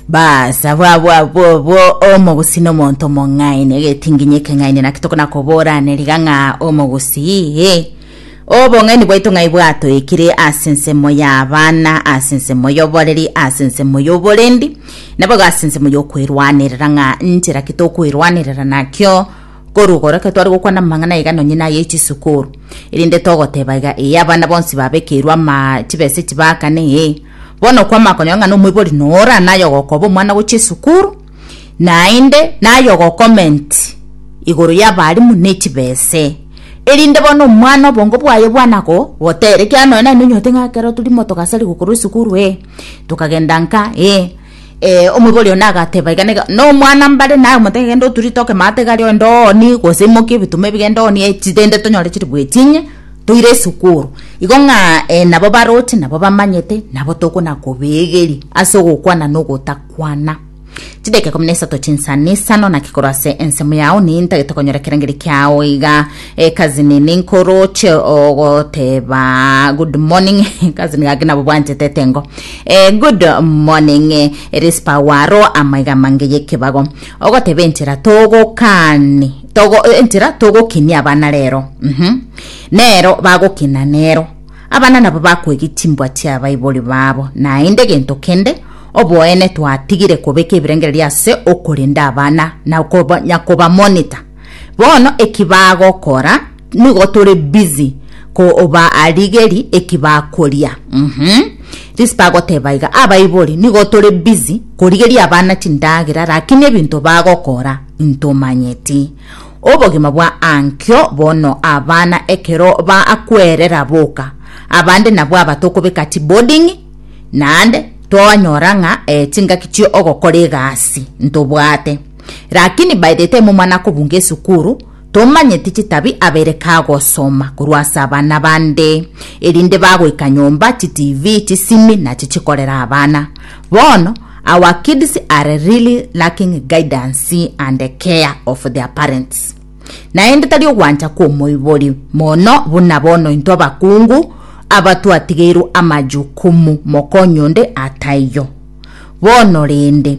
bas abwo abwo abwo obwo omogusi nomonto omong'aini egetinginyi ekeng'aini naki tokona koboraneriga ng'a omogusi iye obong'aini bwaito ng'ai bwatoekire ase ensemo y'abana ase ensemo y'oboreri ase ensemo y'oborendi naboigo ase ensemo y'okwerwanerera ng'a nchera ki tokwerwanerera nakio korugoro ekero tware gokwana amang'ana iga nonye naye echisukuru erinde togoteba iga ee abana bonsi babekeirwe ama chibesa echi baakana ee Bono okwama okonyora ng'a nomoibori nora naye ogokoba omwana gochia esukuru naende naye ogocoment igoro y'abalimu ne chibese erinde bono omwana obongo bwaye bwana go gotere ekiagera nonya naye nonyote ng'a ekero turi motogacha rigokorwa esukuru ee tokagenda nka ee. Ee, omoibori one agateba iga, nega- nomwana mbare naye omotebia genda oturite okemate iga aria ogende oonie, gose imokia ebituma ebi genda oonie chi rende tonyore chiri bwechinyia, toire esukuru. Igo ng'a eh nabo baroche nabo bamanyete, nabo tokona kobeegeria ase ogokwana na ogotakwana. Chidakika ikomi na isato chinsana isano, naki korwa ase ensemo yao nintagete konyora ekerengerio kiao iga. Eh, cousin ninkoroche ogoteba good morning cousin gaki nabo bwanchete tengo eh, good morning eh, rispa waro amaiga mange yekebago ogoteba enchera togokani togo, eh, enchera togokinia abana rero mhm nero bagokina nero abana nabo bakwegi chimbwa chiabaibori babo naende gento kende oboene twatigire kobeka ebirengererio ase okorenda abana na koba- nyakoba monitor Bono eki bagokora nigo tore busy ko oba arigeri eki bakoria. Mhm. Risi bagoteba iga abaibori nigo tore busy korigeria abana chindagera lakini ebinto bagokora intomanyeti. Obogima bwa ankio bono abana ekero ba akwerera boka abande nabwo aba tokobeka chi boarding naende twanyora ng'a eh, chingaki chio ogokora egasi ntobwate. Rakini baete temo mana kobunga esukuru, tomanyeti chitabi abere kagosoma korwa ase abana bande, erinde bagoika nyomba chitv chisimi nachi chikorera abana. Bono, our kids are really lacking guidance and care of their parents. Naende tari ogwancha kw'omoibori, mono buna bono intwe abakungu aba twatigeirwe amajukumu mokony'onde ataiyo. Bono rende,